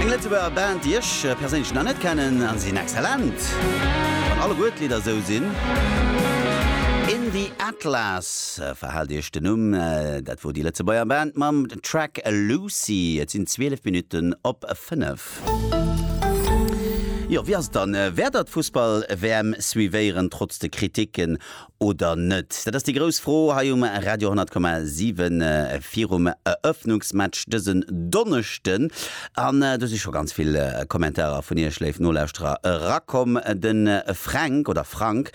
Eng Lëtzebuerger Band déi ech perséinlech nach net kennen an se sinn excellent, wann alleguer d'Lidder esou sinn. In The Atlas, verhaalt iech den Numm, dat wor déi Lëtzebuerger Band mam Track Lucy. Et sinn 12 Minutten op 5. Jo wéi ass et dann, wäert der d'Fussball WM suivéieren trotz de Kritiken oder net? Dat ass déi grouss Fro hei um Radio 10,7 virum Eröffnungsmatch dësen Donneschden. An do si scho ganz vill Kommentarer vun iech, léif Nolauschterer, erakomm. De Fränk, oder Frank,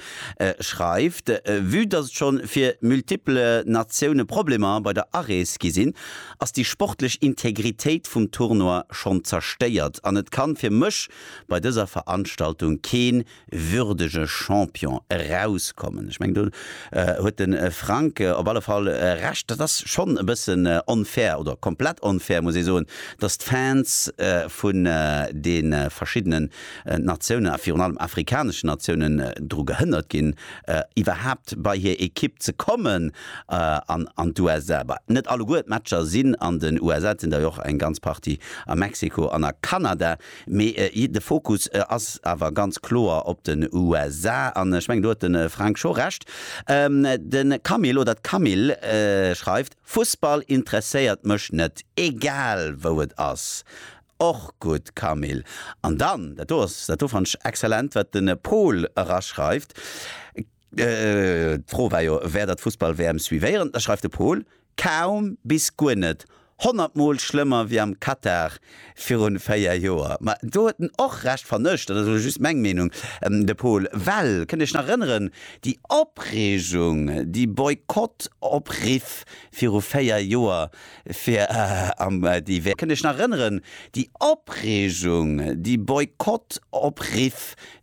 schreift, Vue dass et schonn fir multiple Natioune Problemer bei der Arees gi sinn, ass déi sportlech Integritéit vum Tournoi schonn zerstéiert an et kann fir mech bei dëser Veranstaltung keen würdege Champion erauskommen. Ech mengen, do huet de Frank op alle Fall Recht. Dat ass schonn e bëssen onfair oder komplett onfair, muss ee soen, dass d'Fans vun de verschiddene Natiounen a virun allem afrikaneschen Natiounen dru gehënnert ginn, iwwerhaapt bei hir Ekipp ze kommen an d'USA. Bah, net alleguer d'Matcher sinn an den USA, et sinn der jo och eng ganz Partie a Mexiko an a Kanada. Mee de Fokus ass awer ganz kloer op den USA, an ech mengen do huet de Frank scho Recht. De Camille oder d'Camille schreift, Fussball interesséiert mech net, egal wou et ass. Och gutt Camille. An dann, dat do ass, dat do fannen ech exzellent, wat de Pol eraschreift, D'Fro war jo, wär der d'Fussball-WM suivéieren? Da schreift de Pol, Kaum bis guer net. Honnert Mol schlëmmer wéi am Katar virun 4 Joer. Ma do huet en och Recht, fannen ech, dat ass elo just meng Meenung, de Pol. Well, kënnt Iech nach erënneren, déi Opreegung, déi Boykott-Opriff viru 4 Joer fir am déi WM. Kënnt Iech nach erënneren, déi Opreegung, déi Boykott-Opriff